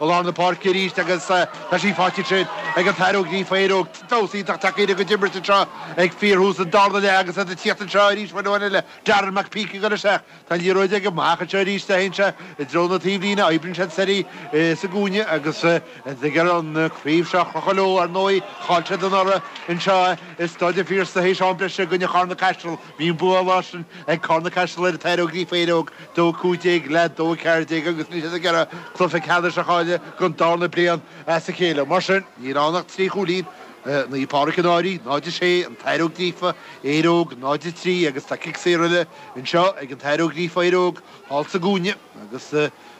I lár na páirce arís agus tá sí faighte ansin ag an tAthair Ó Gríofa Éire Óg. Damhsa iontach tacaíochta a gcuid imirt anseo ag fíorthús an darna leath agus iad ag tíocht anseo arís mar dhuine eile, Darren McPeake, ag dul isteach. Tá an liathróid aige amach anseo arís, théann sé i dtreo na taobhlíne, oibríonn sé siar í sa gcúinne agus iad ag iarraidh an chraobh seo a chrochadh leo. Ar ndóigh, chaill siad anuraidh anseo i Staid an Phiarsaigh théis am breise i gcoinne Charna-Caiseal. Bhí an bua an lá sin ag Carna-Caiseal ar an tAthair Ó Gríofa Éire Óg, 2-15 le 2-14, agus níl siad ag iarraidh cluiche ceannais a chailleadh don darna bliain as a chéile. Mar sin, níl ann ach trí chúilín, Naomh Pádraig an Fhairche, 0-6, an tAthair Ó Gríofa Éire Óg, 0-3, agus tá cic saor eile anseo ag an tAthair Ó Gríofa Éire Óg, thall sa gcúinne, agus.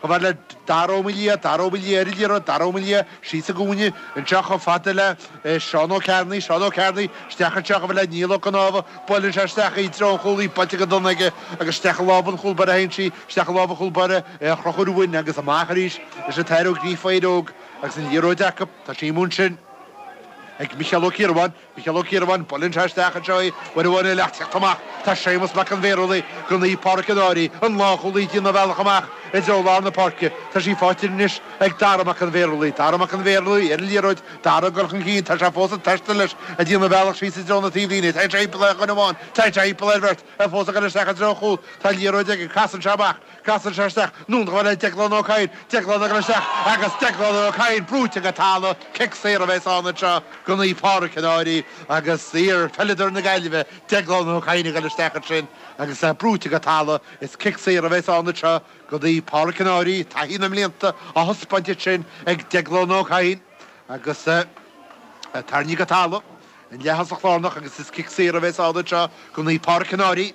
Chomh fada le Dara Ó Maoildhia, Dara Ó Maoildhia ar an liathróid, Dara Ó Maoildhia síos sa gcúinne anseo chomh fada le Seán Ó Cearnaigh, Seán Ó Cearnaigh isteach anseo chomh fada le Niall Ó Conámha, buaileann sé isteach i dtreo an chúil í, buailte go dona aige agus isteach i lámha an chúlbáire a théann sí, isteach i lámha an chúlbáire Conchúr Ruáin agus amach arís leis an tAthair Ó Gríofa Éire Óg agus an liathróid acu, tá sí anonn ansin ag Micheál Ó Ciarubháin. Micheál Ó Ciarubháin, Buaileann sé isteach anseo í uair amháin eile ach tíocht amach tá Séamus Mac an Bhearshúiligh go Naomh Pádraic an Fhairche, an lánchúlaí ag déanamh a bhealach amach i dtreo lár na páirce. Tá sí faighte anois ag Dara Mac an Bhearshúiligh. Dara Mac an Bhearshúiligh ar an liathróid, Dara ag dul chun cinn, tá sé fós ag taisteal leis, ag déanamh a bhealach síos i dtreo na taobhlíne. Téann sé thimpeall ar dhuine amháin, téann sé thimpeall ar bheirt, é fós ag dul isteach i dtreo an chúil. Tá an liathróid aige, casann sé amach. Casann sé isteach anonn chomh fada le Déaglán Ó Cadhain, Déaglán ag dul isteach agus Déaglán Ó Cadhain brúite go talamh, cic saor a bheas ann anseo go Naomh Pádraig an Fhairche agus iar-pheileadóir na Gaillimhe, Déaglán Ó Cadhain ag dul isteach ansin agus é brúite go talamh, is cic saor a bheas ann anseo go Naomh Pádraig an Fhairche, taithí na mblianta á thaispeáint ansin ag Déaglán Ó Cadhain agus é tarraingthe go talamh, an leaththosaí lárnach agus is cic saor a bheas ann anseo go Naomh Pádraig, Cill Áirín.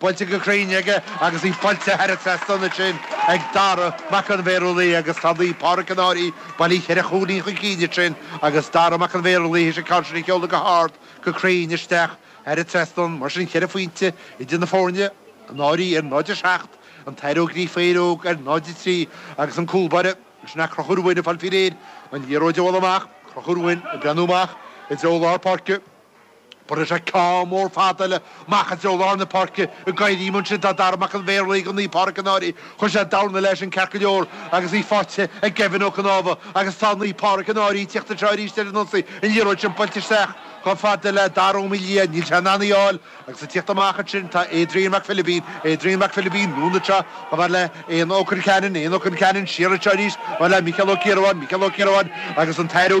Buailte go cruinn aige agus í buailte thar an trasnán ansin ag Dara Mac an Bhearshúiligh agus tá Naomh Pádraic an Fhairche bailithe ceithre chúilín chun cinn ansin agus Dara Mac an Bhearshúiligh théis an ceann sin a sheoladh go hard go cruinn isteach thar an trasnán. Mar sin ceithre phointe idir na foirne, an Fhairche ar 0 7, an tAthair Ó Gríofa Éire Óg ar 0 3 agus an cúlbáire ansin Conchúr Ruáin ag fáil faoi réir an liathróid a bhualadh amach. Conchúr Ruáin ag breathnú amach i dtreo lár páirce. Buaileann sé ceann mór fada leis amach i dtreo lár na páirce ag éirí ansin tá Dara Mac an Bhearshúiligh go Naomh Pádraic an Fhairche. Chuir sé dorn leis ann ceart go leor agus í faighte ag Gavin Ó Conámha agus tá Naomh Pádraic an Fhairche ag teacht anseo arís ar an ionsaí an liathróid sin buailte isteach chomh fada le Dara Ó Maoildhia. Níl sé in ann í a fháil agus ag teacht amach ansin tá Adrian Mac Philibín, Adrian Mac Philibín, anonn anseo chomh fada le Eoghan Ó Concheanainn, Eoghan Ó Concheanainn, siar anseo arís chomh fada le Micheál Ó Ciarubháin, Micheál Ó Ciarubháin, agus an tAthair Ó